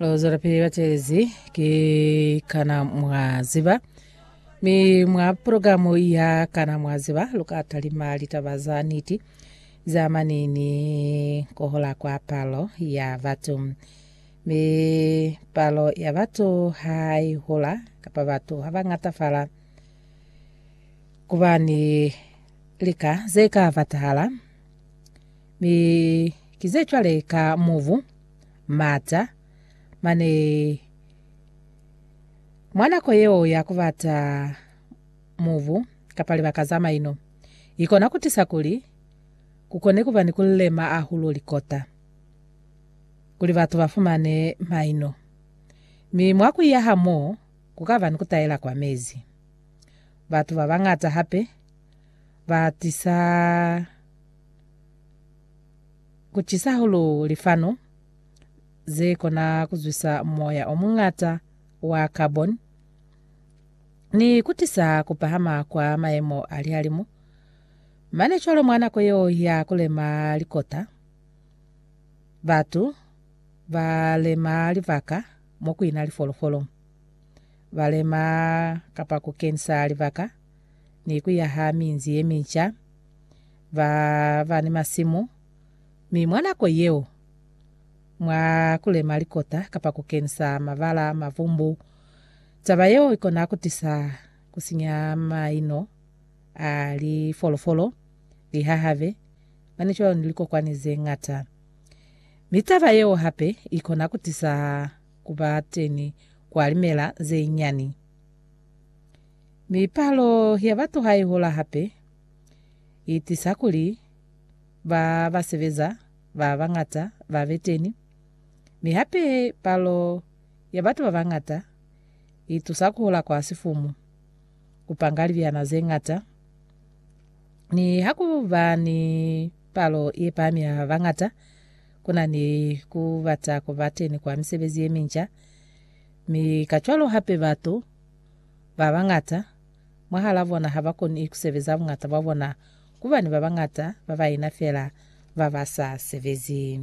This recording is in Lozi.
Lo zwelapili batelezi ki Kana Mwa Ziba. Mi mwa programu ya Kana Mwa Ziba, lu ka talima litaba za niti za mani ni kohola kwa palo ya batu. Mi palo ya batu ha i hola, kapa batu ha ba ngatafala, ku ba ni lika ze ka batahala. Mi ki ze cwale ka mubu, mata, mane mwa nako yeo ya kubata mubu, kapa libaka za maino, ikona kutisa kuli kukone kuba ni kulema ahulo likota, kuli batu bafumane maino. Mi mwa kuiya ha mo, kukaba ni kutaela kwa mezi. Batu babañata hape batisa. Ku cisa hahulu lifano ze kona ku zwisa moya o muñata wa carbon ni ku tisa ku pahama kwa mayemo a lihalimu. Mane cwalo mwa nako yeo ya ku lema likota, batu ba lema libaka mo ku ina lifolofolo. Ba lema kapa ku kenisa libaka ni ku yaha minzi ye minca. ba ba ni masimu, mi mwa nako yeo, mwa ku lema likota kapa ku kenisa mabala a mavumbu, taba yeo i kona ku tisa ku sinya maino a lifolofolo, lihahabe, mane cwalo ni likokwani ze ñata. Mi taba yeo hape i kona ku tisa ku ba teni kwa limela ze nyani. Mi palo ya batu ha i hola hape, i tisa kuli ba ba sebeza ba bañata ba be teni, mi hape palo ya batu ba bañata i tusa ku hula kwa sifumu, ku panga libyana ze ñata. Ni ha ku ba ni palo ye pami ya bañata, ku na ni ku bata ku ba teni kwa misebezi ye minca, mi kacwalo hape batu ba bañata mwahal'a bona ha ba koni ku sebeza buñata bwa bona ku bani ba bañata ba baina fela ba ba sa sebezi.